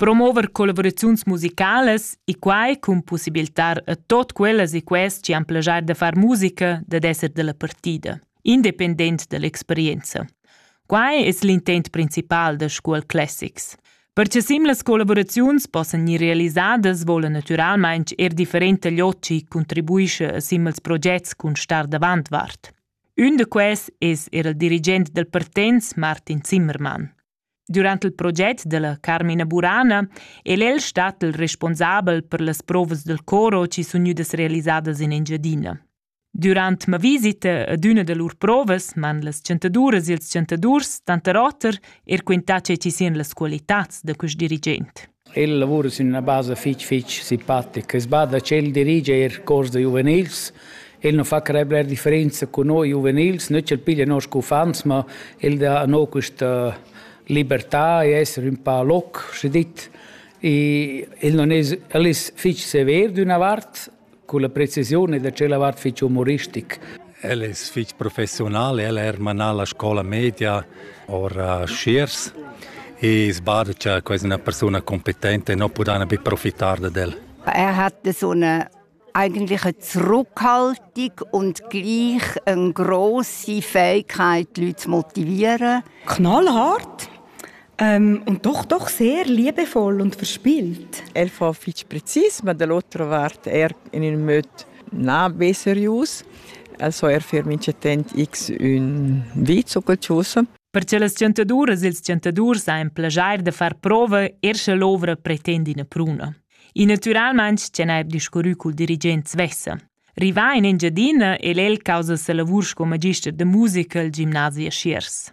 Promover collaboraziuns musicalas e quai cun possibilitar a tot quellas e quest che han plagiar da far musica dad esser della partida, independent dall'experienza. Quai es l'intent principal da Scuol Classics. Perche sim las collaboraziuns possan gnir realisadas vola natüralmaing er different tagliocci contribuisce a simils progets cun star davant vart. Ün da quels es eir il dirigent dal Partenz Martin Zimmermann. Durant il proget da la Carmina Burana el el stat il responsabel per las provas dal coro chi sun gnüdas realisadas in Engiadina. Durant ma visita ad üna da lur provas m'han las chantaduras e ils chantadurs tanter oter er quintà che chi sian las qualitats da quist dirigent. El lavura sün üna basa fich fich simpatica. Es bada ch'el dirigia eir cors da giuvenils. El nu fa creer bler differenza cun noi giuvenils, not ch'el piglia noss uffants, ma el dà a no quista libertà e esser ün pa loc, schi dit. I el non es el es fich sever d'üna vart Culla precisiun e da tschella vart fich umoristic. El es fich professional, el ha er manà la scola media ora a Schiers e sbada cha quasi üna persuna competente non pudana be profitar dad el. Er hat so eine eigentlich zurückhaltung und gleich eine grosse Fähigkeit, die Leute zu motivieren. Knallhart. Ähm, und doch, doch sehr liebevoll und verspielt. El fa fitg precis, ma dall'otra vart er in ün möd na be serius. Also er fer minchatent x ün vi zucalcius. Per che las chantaduras e ils chantadurs han plagiar da far prova er sche l'ovra pretende ina pruna. I naturalmente c'è n'è discurrü col dirigent svessa. Rivà in Engiadina è el causa sa lavur sco magister de musica al gimnasi a Schiers.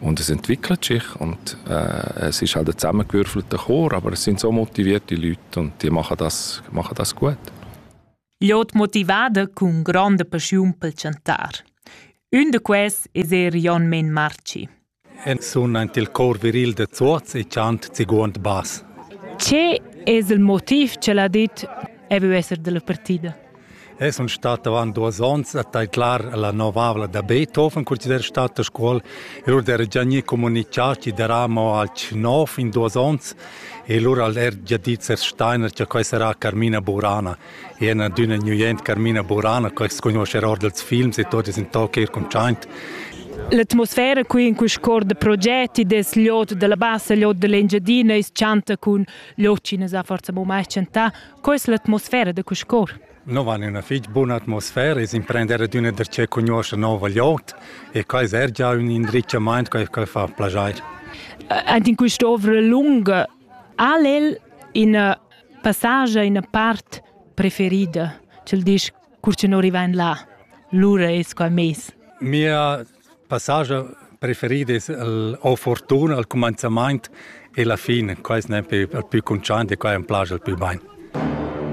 Und es entwickelt sich und äh, es ist halt ein zusammengewürfelter Chor, aber es sind so motivierte Leute und die machen das, machen das gut. Ja, die motivada cun gronda paschiun pel chantar. Un de quels es er Jon Men Marci. En sun aint il cor viril de Zuoz e chant ziguond bas. Ce es il motiv che l'ha dit e vu esser della partida? Eu sun stat avant duos ons a taidlar la novavla da Beethoven, consider stat a Scuol. Lur d'era già gnü comunichà chi darà amo alch nov in duos ons e lura al er già dit Sers Steiner cha quai sarà Carmina Burana. E ena d'üna gnüent Carmina Burana, quai s'conoscerà or dels films e tot es in toc eir cuntschaint. L'atmosfera qui in quist cor de progetti des liot della bassa, liot dell'Engiadina, is chanta cun liot chi ne sa forza mo mai chantà, Co es l'atmosfera da Cuscor? Nous han üna fich buna atmosfera e s'imprender ad üna da che cugnuoscha nouva glieud e quai es er già ün indrizchamaint che che fa plaschair. Aint in quest'ovra lunga al el ina passage ina part preferida, cel disch cur che non rivain là. Lura es quai meis. Mia passage preferit es el o fortuna al cumanzamaint e la fin. Quai es nempe il pü cuntschaint e quai am plascha il pü bain.